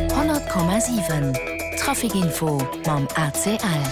100,7 Traficinfo mam ACL.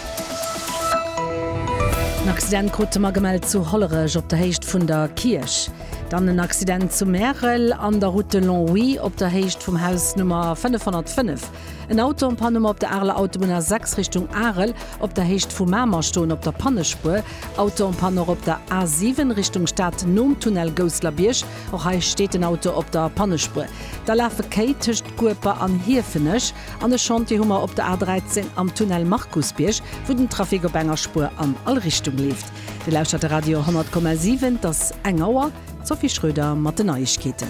En Accident krute mer gemellt zu Hollerech op der Héicht vun der Kierch. Dann en Accident zu Märel an der Route de Longwy op der Héicht vum Haus Nummer 505. En Auto en panne op der Areler Autobunn A6 Richtung Arel op der Héicht vu Mamer stoen op der Pannespuer. Auto en panne och op der A7 Richtung Stad nom Tunnel Gousseler Bierg. Och hei steet den Auto op der Pannespuer. Da lafe Kéi tëscht Gueper an Hiefenech an e Chantier hu mer op der A13 am Tunnel Markusbierg, wou den Trafic op enger Spuer an all Richtung leeft. Dir lauschtert de Radio 100,7. Et ass eng Auer. D'Sophie Schröder mat den Neiegkeeten.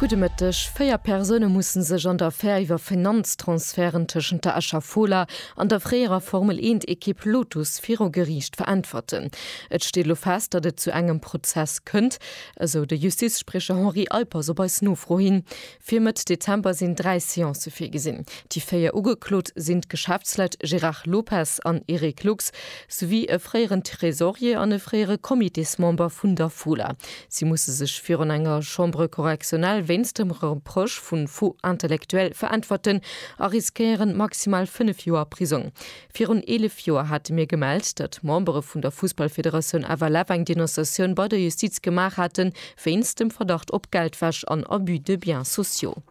Gudde Mëtteg. Véier Persoune musse sech an der Affär iwwer Finanztransferten tëschent der Escher Fola an der fréierer Formel-Eent-Ekipp Lotus viru Geriicht veräntwerten. Et steet elo fest, datt et zu engem Prozess kënnt, esou de Justizspriecher Henri Alpers op eis Nofro hin. Fir Mëtt Dezember sinn dräi Seancë virgesinn. Déi véier Ugeklot sinn d'Geschäftsleit Gérard Lopez an Eric Lux, souwéi e fréieren Tresorier an e fréiere Comitésmember vun der Fola. Si musse sech virun enger Chambre correctionnelle wéinst dem Reproche vu Faux intellectuel veräntwerten a riskéieren maximal fënnef Joer Prisong. Virun 11 Joer hate mir gemellt, datt d'Membere vun der Fussballfederatioun FLF eng Denonciatioun bei der Justiz gemaach haten, wéinst dem Verdacht op Geldwäsch an Abus de biens sociaux.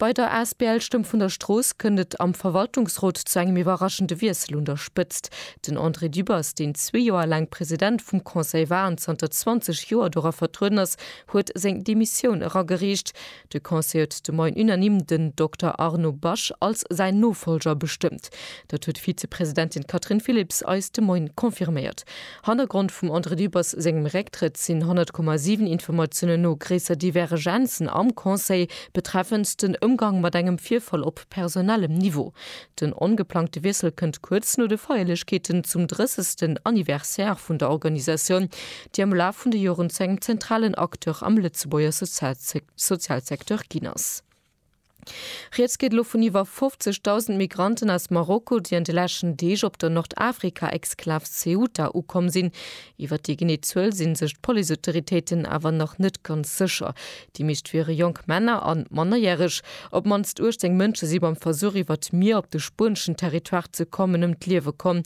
Bei der asbl Stëmm vun der Strooss kënnt et am Verwaltungsrot zu engem iwwerraschende Wiessel un der Spëtzt. Den André Dübbers, deen zwee Joer laang President vum Conseil war an zanter 20 Joer dora vertrueden ass, huet seng Demissioun eragereecht. De Conseil huet de Moien unanime den Dokter Arnaud Basch als säin Nofolger bestëmmt. Dat huet d'Vizepresidentin Catherine Philipps eis de Moien confirméiert. Hannergrond vum André Dübbers sengem Récktrëtt sinn 100,7 Informatiounen no gréisser Divergenzen am Conseil betreffend den Ëmgang mat engem Virfall op personellem Niveau. Den ongeplangte Wiessel kënnt kuerz no de Feierlechkeeten zum 30. Anniversaire vun der Organisatioun, déi am Laf vun de Joren zu engem zentralen Acteur am Lëtzebuerger Sozialsecteur ginn ass. Rieds geet elo vun iwwer 50.000 Migranten aus Marokko, déi an de leschten Deeg op der Nordafrika-Exklav Ceuta ukomm sinn. Iwwer déi genee Zuel si sech d'Policeautoritéiten awer nach net ganz sécher. Déi meescht wiere jonk Männer an mannerjäreg. Op d'mannst 18 Mënsche si beim Versuch iwwert d'Mier op de spueneschen Territoire ze kommen ëm d'Liewe komm.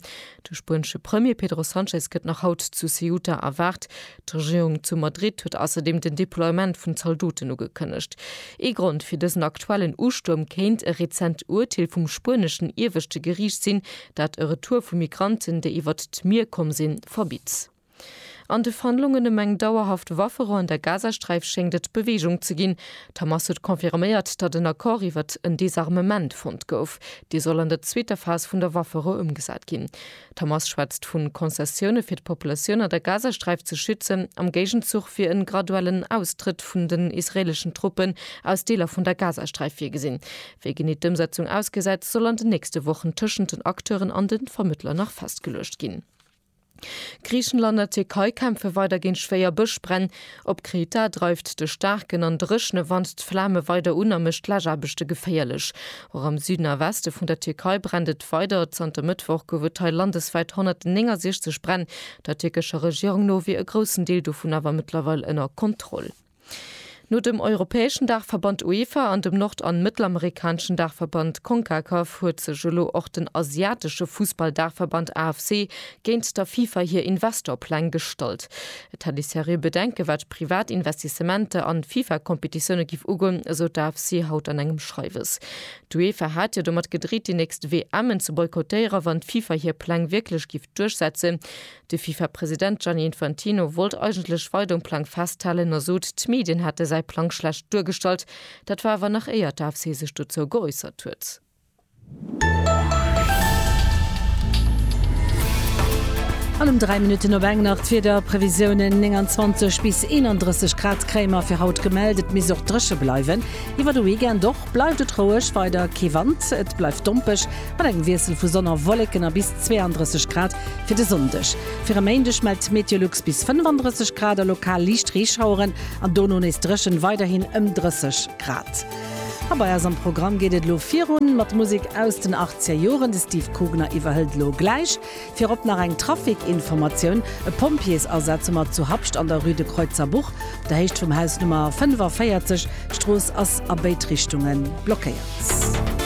De spuenesche Premier Pedro Sanchez gëtt nach haut zu Ceuta erwaart. D'Regierung zu Madrid huet ausserdeem den Deploiement vun Zaldoten ugekënnegt. Ee Grond fir dësen aktuellen Ustuerm kéint e rezent Urteel vum spueneschen Ieweschte Geriicht sinn, dat e Retour vu Migranten, déi iwwert d'Mier komm sinn, verbitt. An de Verhandlungen ëm eng dauerhaft Wafferou an der Gazasträif schéngt et Beweegung ze ginn. D'Hamas huet confirméiert, datt en Accord iwwert en Desarmement fonnt gouf. Dee soll an der zweeter Phas vun der Wafferou ëmgesat ginn. D'Hamas schwätzt vu Concessioune fir d'Populatioun an der Gazasträif ze schützen, am Géigenzuch wier en graduellen Austrëtt vun den israeeleschen Truppen aus Deeler vun der Gazasträif virgesinn. Wéi genee d'Ëmsetzung ausgesäit, soll an den nächste Wochen tëschent den Acteuren an de Vermëttler nach festgeluecht ginn. Griichenland a Tierkei kämpfe weider géint schwéier Bëschbränn. Op Kreta dreift de staarken an dréchne Wand d'Flame weider un a mécht d'Läschaarbechte geféierlech. Och am Süden a Weste vun der Tierkei brennt et weider. Zanter Mëttwoch gouf et hei landeswäit 169 Bränn. Der tierkescher Regierung no wier e groussen Deel dovun awer mëttlerweil ënner Kontroll. No dem europäeschen Daachverband UEFA an dem nord an mëttelamerikaneschen Daachverband Concacaf huet sech elo och den asiatesche Fussball-Daachverband AFC géint der FIFA hir Investor-Pläng gestallt. Et hätt ee seriö Bedenke wat privat Investissementer an FIFA-Kompetitioune giff ugoen, esou d'AFC haut an engem Schreiwes. D'UEFA hat jo domat gedreet déi nächst WMen ze boykottéieren, wann d'FIFA hir Pläng wierklech giff duerchsetzen. De FIFA-President Gianni Infantino wollt eigentlech weider um Plang festhalen a sot, d'Medien hätte säi Plang schlecht duergestallt. Dat war awer nach éier d'AFC sech dozou geäussert huet. An ëm 3 Minutten op eng nach d'Wiederprevisiounen, 29 bis 31 Grad kréie mer fir haut gemellt. Et misst och dréche bleiwen iwwer de Weekend. Och bleift et roueg, weider kee Wand, et bleift dompeg mat engem Wiessel vu Sonn a Wolleken a bis 32 Grad Fir de Sonndeg. Fir e Méindeg mellt d'Meteolux bis 35 Grad a lokal liicht Reeschaueren an dono nees dréchen, weiderhin ëm 30 Grad. A bei eis am Programm geet et elo virun mat Musek aus den achtzeger Joren. De Steve Kugner iwwerhëlt elo gläich. Virop nach eng Trafikinformatioun, E Pompjeesasaz um At zu Habscht an der Rue de Kreutzerbuch, op der Héicht vum Haus Nummer 45. D'Strooss ass a béid Richtunge blockéiert.